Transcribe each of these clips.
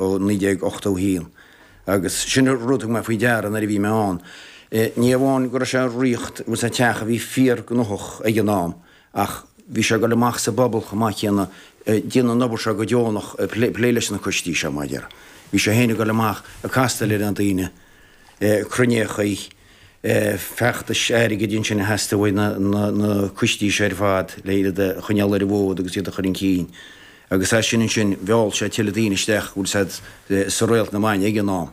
ó 1981, agus sin rud a thug mé faoi deara nuair a bhí mé ann, ní amháin go raibh sé ag ritheacht an teach a bhí fíorghnóthach ag an am, ach bhí sé ag dul amach sa bpobal chomh maith céanna, ag déanamh an obair seo go deonach, plé leis na coistí seo, mar a déarfá. Bhí sé féin ag dul amach ag castáil le na ndaoine, cruinníochaí, feachtais airgid ansin a theastaigh ó na coistí seo ar fad le iad a choinneáil ar an bhfód agus iad a chur chun cinn. Agus as sin ansin, mheall sé tuilleadh daoine isteach an bhfuil a fhios agat sa Réalt na Maidne ag an am.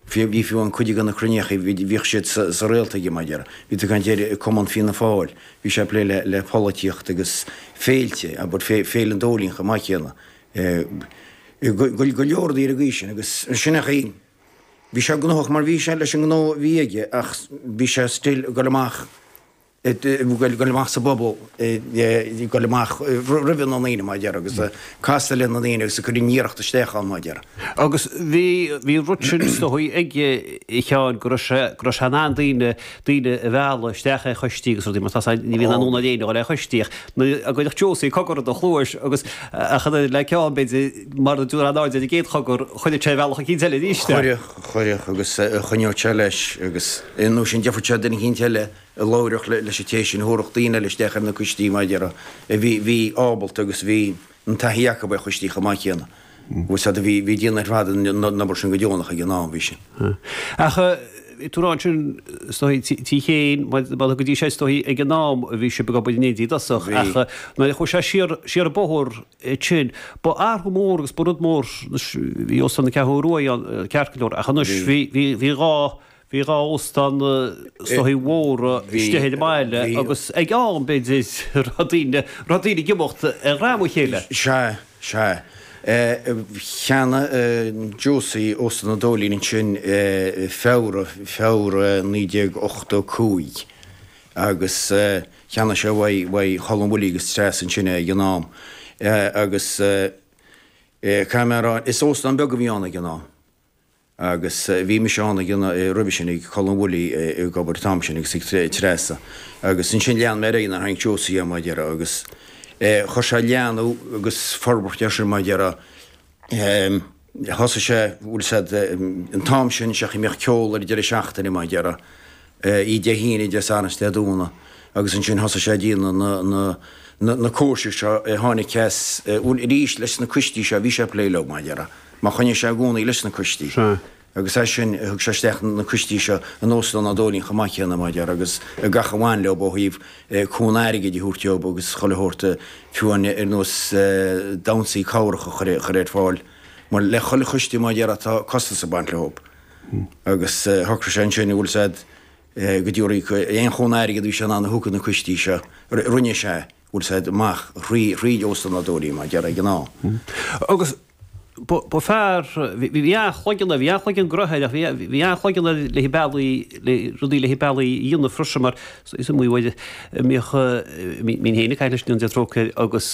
Fiú, bhí fiú amháin cuid de na cruinníochaí, bhíodh siad sa Réalt aige mar a déarfá, bhí tú ag caint ar Cumann Fianna Fáil, bhí sé ag plé le, le polaitíocht agus féilte, abair fé, Féile an Dóilín chomh maith céanna. Eh, go, go, go leor daoine ag aois sin agus ansin ach í, bhí sé gnóthach mar bhí sé leis an ngnó a bhí aige ach bhí sé still ag goil amach, goil amach sa bpobal, goil amach roimhe na ndaoine, mar a déarfá, agus ag castáil le na ndaoine agus ag cur an iarracht isteach ann, mar a déarfá. Agus bhí, bhí an rud sin is dóigh aige, a Sheáin, go raibh sé, go raibh sé in ann daoine, daoine a mhealladh isteach ar choistí agus rudaí mar tá a fhios agat, ní bhíonn aon fhonn ar éinne a dhul ar choistí ach nuair a chuirfeadh Josie cogar i do chluais agus, ach an oiread le Sheán b'fhéidir, mara dtabharfá aon aird ar an gcéad chogar, chuirfeadh sé bealach eicínt eile arís é. Chuirfeadh, chuirfeadh agus choinneodh sé leis agus, nó sin gheobhadh sé duine eicínt eile. a labhródh leis an té sin thabharfadh daoine eile isteach ar na coistí mar a déarfá, a bhí ábalta agus bhí an taithí acu ar choistí chomh maith céanna. Bhuel sea, do bhí daoine ar fad ina n-obair sin go deonach ag an am, bhí sin. Ach bhí tú ag rá ansin is dóigh, a Sheáin, bhuel go dtí seo is dóigh ag an am a bhí sibh ag obair in éindí i dtosach ach nuair a chuaigh sé siar, siar an bóthar ansin, ba athrú mór agus ba rud mór, bhí Óstán an Cheathrú Rua ann, ceart go leor, ach anois bhí, bhí, bhí dhá. Bhí dhá óstán na soithigh mhóra istigh ar an mbaile agus ag am, b'fhéidir, raibh daoine, raibh daoine ag imeacht ar dhroim a chéile. Sea, sea. Cheannaigh Josie Óstán an Dóilín ansin Feabhra, Feabhra 1985 agus cheannaigh sé uaidh, uaidh Cholm Willie agus Treasa ansin é ag an am agus caithfidh mé a rá, is óstán beag a bhí ann ag an am. agus bhí mise ann ag an, roimhe sin ag Colm Willie ag obair an t-am sin agus ag Treasa agus ansin lean mé ar aghaidh ann nuair a cheannaigh Josie é mar déarfá agus chuir sé leathnú agus forbairt air sin mar déarfá thosaigh sé, bhfuil a fhios agat, an t-am sin, sé an chaoi a mbíodh ceol ar deireadh seachtaine mar déarfá. í Dé hAoine Dé Sathairn 's Dé Domhnaigh agus ansin thosaigh sé ag déanamh na, na, na, na cóisir seo eh tháinig ceas eh bhuel arís leis na coistí seo bhí sé a' plé leo mar a déarfá choinnigh sé i gcónaí leis na coistí Sea. agus as sin thug sé isteach na coistí seo in Óstán an Dóilín chomh maith céanna mar a déarfá agus eh gach a bhain leob ó thaobh eh cúnamh airgid a thabhairt dóib agus chuile shórt eh fiú amháin ar nós eh damhnsaí cabhrach a chur a chur ar fáil mar le chuile choiste mar a déarfá tá costas ag baint leob. agus shocraigh sé ansin an bhfuil a fhios agat go díreach aon chúnamh airgid a bhí sé in ann a thabhairt do na coistí seo rinne sé é bhfuil a fhios agat amach thríd thríd Óstán an Dóilín mar a déarfá ag an am agus ba fear bhí bhí an-chloigeann air bhí an-chloigeann gnotha air bhí bhí an-chloigeann air le bealaí le rudaí le bealaí a dhéanamh freisin mar Is iomaí uair a mbíodh mé féin ag caint leis go ndéana Dia trócaire air agus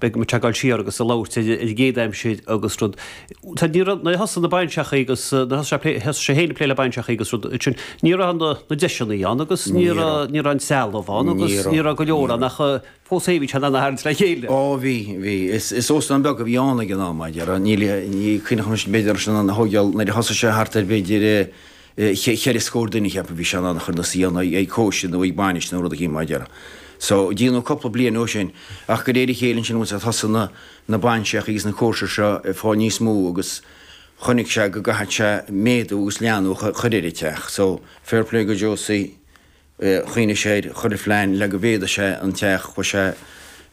bheadh muid ag gabháil siar agus ag labhairt ar an gcéad aimsir agus rud. Nuair a thosaigh na bainseachaí agus nuair a thosaigh sé féin ag plé le bainseachaí agus rud, ansin ní raibh na deiseannaí ann agus ní raibh, ní raibh an trealamh ann agus ní raibh go leor ann ach fós féin bhí sé in ann a tharraingt le chéile. Ó bhí, bhí. Is óstán beag a bhí ann ag an am, níl, ní, ní chuimhneochaimis b'fhéidir ar an óstán a thógáil nuair a thosaigh sé thart ar b'fhéidir, cheithre scór duine, cheapfainn, bhí sé in ann a chur ina suí ann ag cóisir nó ag bainis nó rud eicínt mar a déarfá so dia nó cúpla bliain ó sin ach de réir a chéile ansin once thosaigh na na bainseachaí agus na cóisir seo ag fáil níos mó agus chonaic sé go gcaithfeadh sé méadú agus leathnú a chur chur ar an teach so fair play do Josie Choinnigh sé air, ag cur plean le go méadódh sé an teach, chuir sé,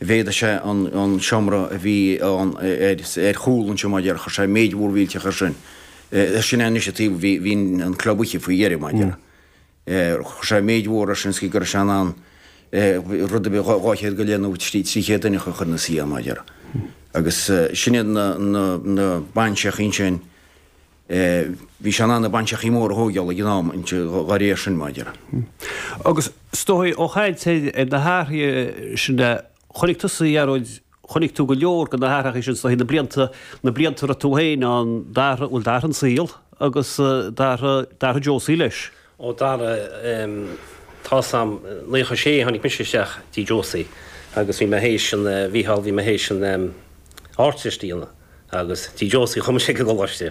méadódh sé an, an seomra a bhí ann ar, ar chúl an seomra, mar a déarfá, chuir sé méid mhór mhillteach air sin. Sin é anois an taobh, bhí, bhí an club oíche faoi dheireadh, mar a déarfá. Chuir sé méid mhór air sin is go, go raibh sé in ann rud a bhí dhá, dhá chéad go leith nó trí, trí chéad duine a chur ina suí ann, mar a déarfá. Agus sin iad na, na, na bainseachaí ansin. é. Bhí sé in ann na bainseachaí móra a thóigeáil ag an am dá réir sin, mar a déarfá. Agus is dóichí ó chaint ar na hathruithe sin a chonaic tusa, a Ghearóid, chonaic tú go leor de na hathruithe sin is dóichí, na blianta, na blianta a raibh tú féin ann, d'athraigh, bhuel d'athraigh an saol agus d'athraigh, d'athraigh Josie leis. Ó d'athraigh, tá's a'm, naocha sé a tháinig mise isteach tigh Josie agus bhí mé théis an, Mhícheál, bhí mé théis an Ardteist a dhéanamh agus tigh Josie a chuaigh mise ag an gcoláiste.